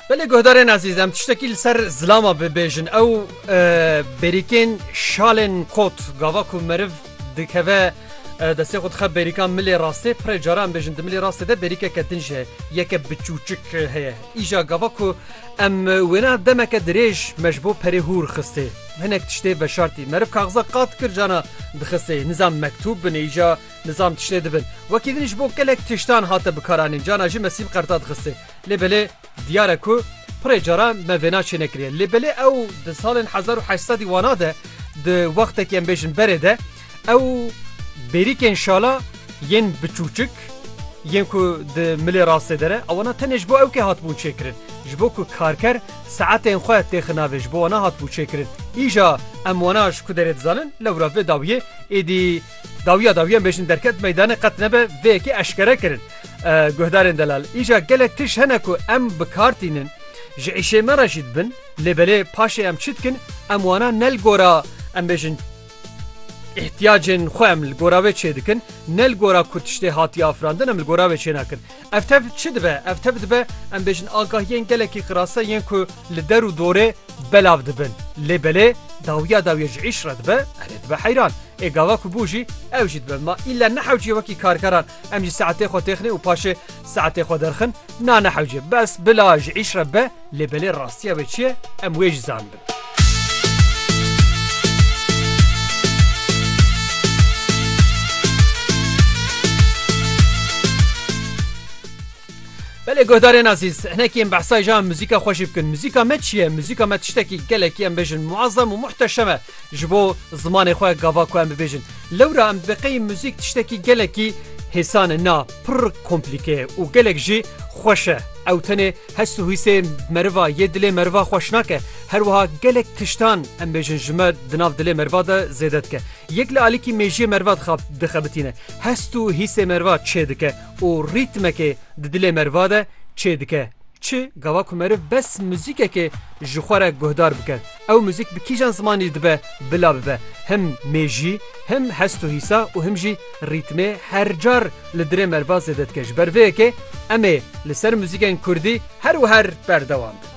Belê guhdarên ezîz em tiştekî li ser zilama bibêjin ew bêrîkên şalên kot gava ku meriv dikeve destê xwe dixe bêrîka milê rastê pirê cara em bêjin di milê rastê de bêrîkeke din ji yeke biçûçik heye îja gava ku em wêna demeke dirêj me ji bo perê hûr xistê hinek tiştê veşartî meriv kaxiza qat kir cana dixistê nizam mektûb binêja Nizam tiştê dibin. Wekî din ji bo gelek tiştan hate bikaranîn cana jî me sîm qerta dixistê. Lê belê diyar e ku pirê caran me vêna çênekiriye. Lê belê ew di salên hezar û heşt sedî wana de di wextekî em bêjin berê de ew bêrîkên şala yên biçûçik yên ku di milê rastê de ne ewana tenê ji bo ewkê hatibûn çêkirin. Ji bo ku karker saetên xwe têxin navê ji bo wana hatibû çêkirin. Îja em wana ji ku derê dizanin lewra vê dawiyê êdî Dawiya dawiyan bêjin derket meydanê qet nebe vê yekê eşkere kirin guhdarên delal. Îja gelek tişt hene ku em bi kar tînin. Ji îşê me re jî dibin lê belê paşê em çi dikin em wana ne li gora em bêjin îhtiyacên xwe em li gora wê çêdikin ne li gora ku tiştê hatiye afirandin em li gora wê çênakin. Ev tev çi dibe? Ev tev dibe em bêjin agahiyên gelekî qirase yên ku li der û dorê belav dibin. Lê belê dawiya dawiyê ji îş re dibe, erê dibe heyran. Ê gava ku bû jî ew jî dibe. Ma îlla nehewcîye wekî karkeran em jî saetê xwe têxinê û paşê saetê xwe derxin. Na nehewcîye. Bes bila ji îş re be lê belê rastiya wê çi ye em wê jî zanibin. Belê guhdarên azîz hinekî em behsa jan muzîka xweşî bikin muzîka me çiye muzîka me tiştekî gelekî em bêjin muazzam û muhteşeme ji bo zimanê xwe gava ku em bibêjin lewra em biqey muzîk tiştekî gelekî hêsan na pir komplîke û gelek jî xweşe ew tenê Hest û hîsê meriva yê dilê meriva xweş nake. Her wiha gelek tiştan em bêjin ji me di nav dilê meriva de zêde dike. Yek li alîkî mêjiyê meriva dixab dixebitîne. Hest û hîsê meriva çê dike û rîtmekê di dilê meriva de çê dike. Çi gava ku meriv bes muzîkekê ji xwe re guhdar bike. Ew muzîk bi kîjan zimanî dibe bila bibe him mêjî, him hest û hîsa û him jî rîtmê her car li dirê merva zêde dike. Ji ber vê yekê em ê li ser muzîkên kurdî her û her berdewam bin.